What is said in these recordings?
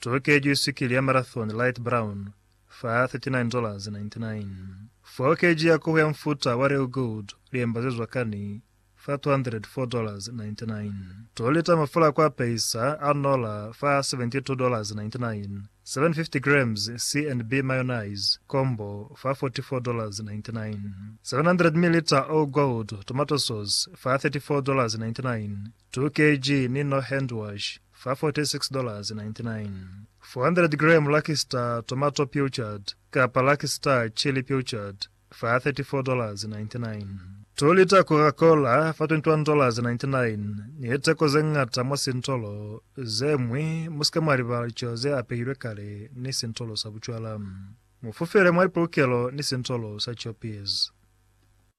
Tokejwi sikili ya marathon light brown fa $39.99. Fokeji ya koho ya mufuta wa real gold liembazezwa kani fa $204.99. To lita mafula a ku apeisa a nola fa $72.99. 750 grams C and B mayonnaise combo fa $44.99. 700 milliliter all gold tomato sauce fa $34.99. 2 kg Mino Handwash fa $46.99 400 gram Lucky Star Tomato Pilchard kapa Lucky Star Chili Pilchard fa $34.99 2 lita Coca Cola fa $21.99 Ni liteko ze ñata mwa sintolo ze ñwi Musike mwa libala licelo ze apehilwe kale ni sintolo sa bucwala Mu fufele mwa lipolokelo ni sintolo sa Choppies.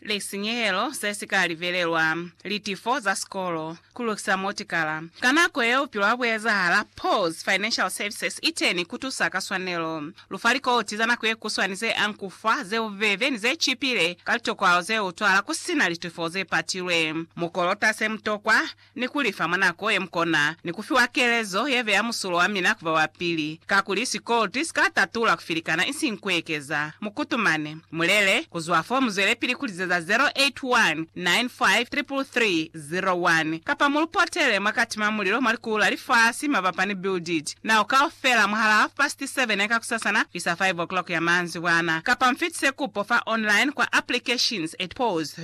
lisinyehelo se si ka livelelwa, litifo za sikolo, ku lukisa motikala. Ka nako yeo bupilo ha bu ezahala. Paul's Financial Services i teni ku tusa ka swanelo. Lu fa likoti za nako ye kuswani ze ankufa, ze bubebe, ni ze cipile ka litokwalo ze utwala ku si na litifo ze patilwe. Mu kolota se mu tokwa, ni ku lifa mwa nako ye mukona, ni ku fiwa kelezo ye beya musulo wa mina ku ba wa pili, kakuli sikolti si ka tatula ku filikana isiñi ku ekeza. Mu kutumane. Mu lele, ku zwa fo mu zwelepili ku lizeza 0819533301, kapa mu lu potele mwa kati mwa mulilo mwa likulu la lifasi mabapa ni Bill Deet, nao kaufela mwahalaa half past seven ya kakusasana kuisa five o'clock ya manzibwana, kapa mu fitise kupo fa online kwa applications at pause.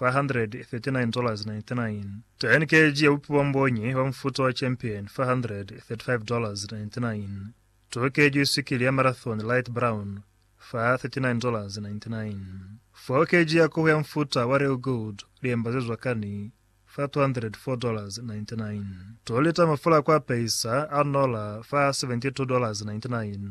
539.99. Tn keji ya bupi bwa mbonyi bwa mufuta wa Champion, $535.99. To keji wisikili ya Marathon Light Brown, $39.99. Foo keji ya kohu ya mufuta wa Real Gold, liemba ze zwakani, $404.99. To lita mafula a ku apehisa a nola, $72.99.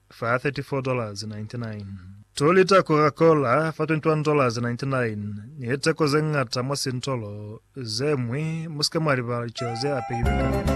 fa $34.99. Two lita Coca-Cola fa $21.99 ni liteko ze ñata mwa sintolo ze ñwi. Mu si ke mwa libala lico ze apehilwe ka.